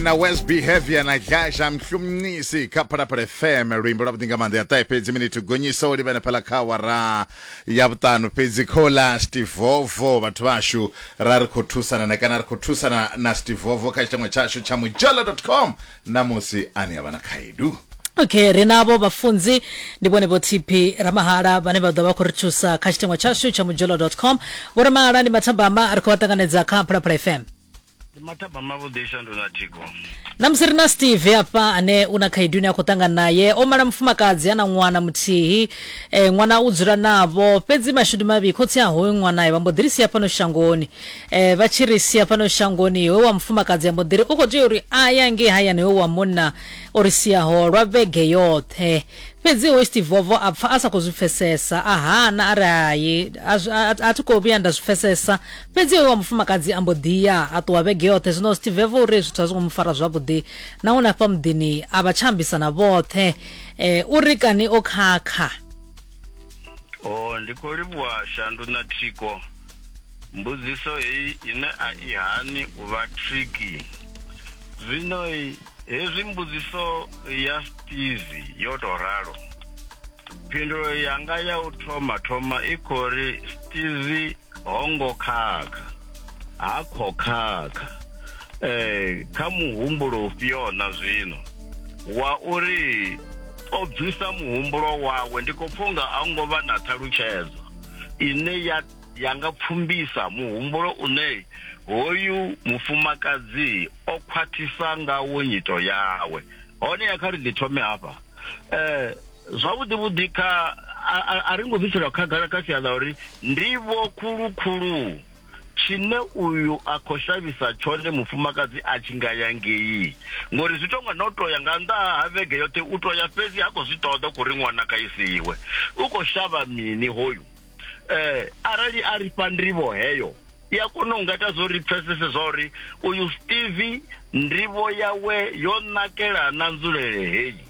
na west behavior na gasha mhlumncisi kha phalaphala fm luimbo lwa vhuḓi nga maanḓa ya ṱahe fhedzi minithu gonyisa u livhana phala kha wara ya vhuṱanu fhedzi khola stivovo vhathu vhashu ra ri khou thusana na kana ri khou thusana na stivovo kha tshitangwa tshashu tsha mujala com namusi ane a vha na khaedu okay ri navho vhafunzi ndi vhone vho tp ramahala vhane vha ḓo vha khou ri thusa kha tshitengwa tshashu tsha mujolo com vho ramahala ndi mathambama ri khou vha ṱanganedza kha phalaphala fm ndi mathaba mavhuḓi shandu na thiko namusi ri na steve hafha ane u na khaedu ine a khou ṱangana naye o mala mufumakadzi a na ṅwana muthihi e, ṅwana u dzula navho fhedzi mashudu mavhi khotsi a hoyu ṅwanae vha mbo ḓi ri sia fhano shangoni e, vha tshi ri sia fhano shangoni hoyu wa mufumakadzi a mbo ḓi ri u khou tea uri a ya ngei hayani hoyu wa munna o ri siaho lwa vhege yoṱhe fhedzi hoyu steve vovo a pfa a sa khou zwi pfesesa a hana a ri hai a zwi- a- a- a thi khou vhuya nda zwi pfesesa fhedzi hoyo wa mufumakadzi a mbo ḓi ya a ṱuwa vhege yoṱhe zwino zwi tibveva uri zwithu a zwi ngo mu fara zwavhuḓi nahone afha muḓini a vha tsha ambisana vhoṱhe um u ri kani o khakha o oh, ndi khou livhuwa shandu na thiko mbudziso heyi ine a i hani u vha triki zwino hezwi mbudziso ya stizi yo tou ralo phindulo yanga ya u thoma thoma i khou ri stizi ho ngo khakha ha kho khakha eh kha muhumbulo ufhio na zwino wa uri o bvisa muhumbulo wawe ndi khou pfunga a hu ngo vha na ṱhalutshedzo ine ya ya nga pfumbisa muhumbulo une hoyu mufumakadzi o khwathisa ngawo nyito yawe hone ya kha ri ḓi thome hafha eh Zwavhuḓi vhuḓi kha a ri ngo bviselwa khagala kha sia ḽa uri ndivho khulu khulu tshine uyu a khou shavhisa tshone mufumakadzi a tshi nga ya ngei ngori zwi tonga no to ya nga nnḓa ha vhege yoṱhe u to ya fhedzi ha khou zwi ṱoḓa kuri ṅwana kha isiwe u khou shavha mini hoyu eh arali a ri fha ndivho heyo i a kona u nga ita zwo ri pfesese zwa uri uyu steve ndivho yawe yo nakela na nzulele heyi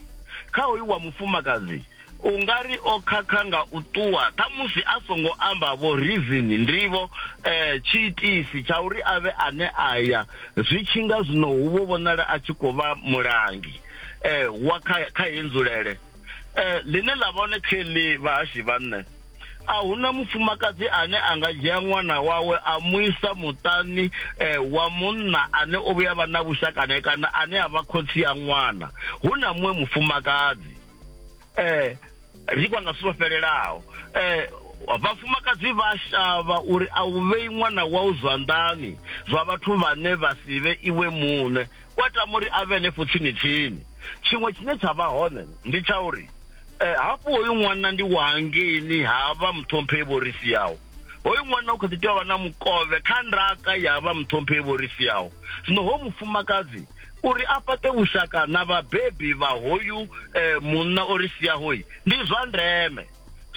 kha hoyu wa mufumakadzi u nga ri o khakha nga u ṱuwa ṱhamusi a songo amba vho reason ndivho um tshiitisi tsha uri a vhe ane a ya zwi tshi nga zwino hu vho vhonala a tshi khou vha mulangi um wa kha kha heyi nzulele um ḽine ḽa vha hone kha ḽi vhahashi vhanṋe a huna mufumakadzi ane a nga dzhia ṅwana wawe a mu isa muṱani eh, wa munna ane o vhuya vha na vhushaka nae kana ane a vha khotsi ya ṅwana hu na muṅwe mufumakadzi eh ri kwa nga sivho fhelelaho eh vhafumakadzi vha shavha uri a u vhei ṅwana wau zwanḓani zwa vhathu vhane vha si vhe iwe muṋe Wa tama uri a vhe henefho tsini-tsini. Tshiṅwe tshine tsha vha hone ndi tsha uri eh, hafhu hoyu ṅwana ndi wa hangeini ha vha muṱhomphei vho ri siaho. Hoyu ṅwana u kha ḓi tea u vha na mukovhe kha ndaka ya vha muṱhomphei vho ri siaho. Zwino hoyu mufumakadzi uri a fhaṱe vhushaka na vhabebi vha hoyu eh, munna o ri siaho ndi zwa ndeme.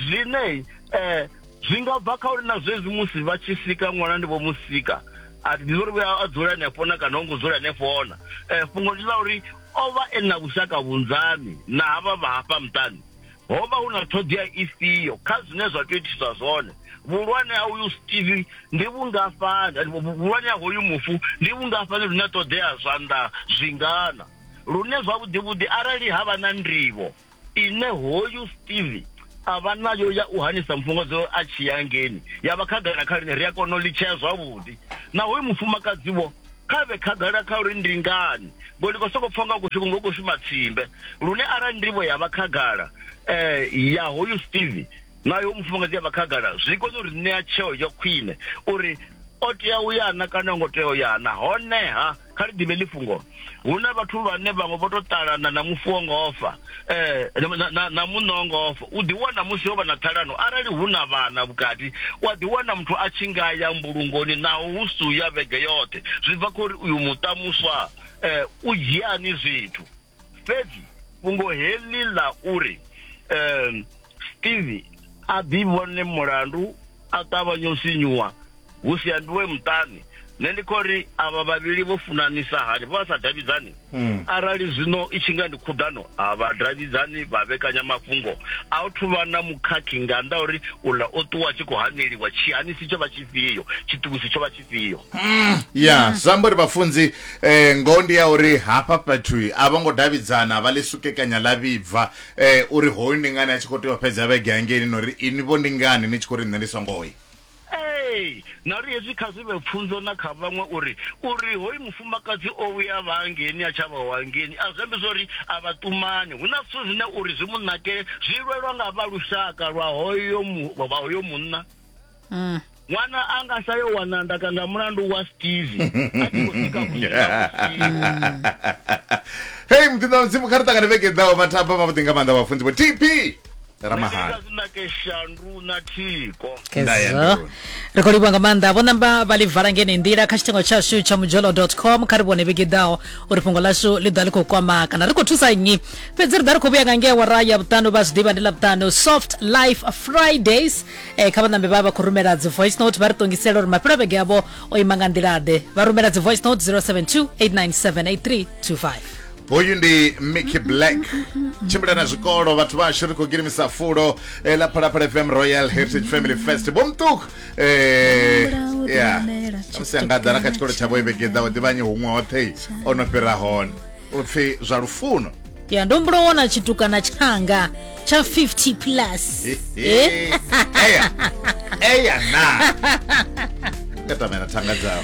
zwine eh zwi nga bva kha uri na zwezwi musi vha tshi sika ṅwana ndi vho musika a ndi uri vhuya a dzula hanefho na kana ho ngo dzula hanefho na eh fhungo ndi ḽa uri o vha e na vhushaka vhunzani na havha vha hafha muṱani ho vha hu na ṱhoḓea ifhio kha zwine zwa tea u itiswa zwone vhuhulwane ha uyu steve ndi vhungafhani eh, vhu- vhuhulwane ha hoyu mufu ndi vhungafhani lune ṱoḓea zwanḓa zwingana lune zwavhuḓi vhuḓi arali ha vha na ndivho ine hoyu steve a vha nayo ya u hanisa mufhungodzo a tshi ya ngeni ya vha khagala kha lune ri a kona u litshea zwavhuḓi na hoyu mufumakadziwo kha vhe khagala kha uri ndi ngani ngo ndi khou sokou pfha nga kushumi ngo khou shuma tsimbe lune arali ndivho ya vha khagala um ya hoyu steve na yo mufumakadzi ya vha khagala zwi kone uri ṋea tsheo ya khwine uri o tea u yana kana ngo tea u yana honeha kha ri ḓivhe ḽifhungo hu na vhathu vhane vhaṅwe vho to ṱalana na mufu wo ngofa eh na muṋo ngofa u ḓi wana musi ho vha na ṱhalano arali hu na vhana vhukati wa ḓi wana muthu a tshi nga ya mbulungoni naho hu su ya vhege yoṱhe zwi bva khori uyu muṱa muswa eh u dzhiani zwithu fhedzi fhungo heḽi ḽa uri um steve a ḓi vhone mulandu a ṱavhanya u sinyuwa hu si ambiwe muṱani nṋe ndi khou ri avha vhavhili vho funanisa hani vha sa davhidzani hmm. arali zwino i tshi nga ndi khuḓano a vha davhidzani vha vhekanya mafhungo a u thuvha na mukhakhi nga nnḓa uri uḽa o ṱuwa tshi khou haneliwa tshihanisi tsho vha tshifhio tshiṱukusi tsho vha ifhio ya zwi amba uri vhafunzi eh, ngoho ndi ya uri hafha fhethui a vho ngo davhidzana vha ḽi sukekanya ḽa vhibva eh, uri hoyu ndi ngani a tshi khou tea u fhedza vhege hangeini na uri ini vho ndi ngani ni tshi khou ri nṋe ndi songo yi ee na uri hezwi kha zwi vhe pfunzo na kha vhaṅwe uri uri hoyu mufumakadzi o vhuya vha hangeni a tsha vha hangeni a zwi ambi zwa uri a vha ṱumani hu na zwithu zwine uri zwi mu nakele zwi lwelwa nga vha lushaka lwa hoyo mu- vha hoyo munna Mm. ṅwana a nga sa yo wana ndaka nga mulandu wa steve a tshi khou sika hei muḓinḓa mudzimu kha ri ṱangane vhege ḓaho vhathaba vhavhuḓi nga maanḓa vhafunzi vho tp ramahana zinake shandu na thiko Kezwo. ri khou livhuwa nga maanḓa vho namba vha ḽi vala ngene nḓila kha tshitengo tshashu tsha mudzholo com kha ri vhone vhege ḓaho uri fhungo lashu ḽi ḓa ḽi khou kwama kana ri khou thusa nnyi fhedzi ri ḓa ri khou vhuya nga ngea wara ya vhuṱanu vha zwi ḓivha ndi ḽa vhuṱanu soft life fridays e, kha vhanambe vha vha khou rumela dzi voice note vha ri ṱongisela uri mafhelo vhege yavho o ima nga nḓila ḓe vha rumela dzi voice note 072 897 hoyu ndi mickey black tshimbila na zwikolo vhathu vhashu ri khou girimisa fulo eh, ḽa phalaphala fm royal heritage family fest bomṱuku eh, ya amusi angaḓa na kha tshikolo tshavho ivhege ḓaho ḓivhanyi huṅwe hoṱhe o no fhira hone u pfi zwa lufuno ya ndo mbulo wona tshitukana tshanga tsha 50 plus Eh? eya eya na nga tamela thanga dzawe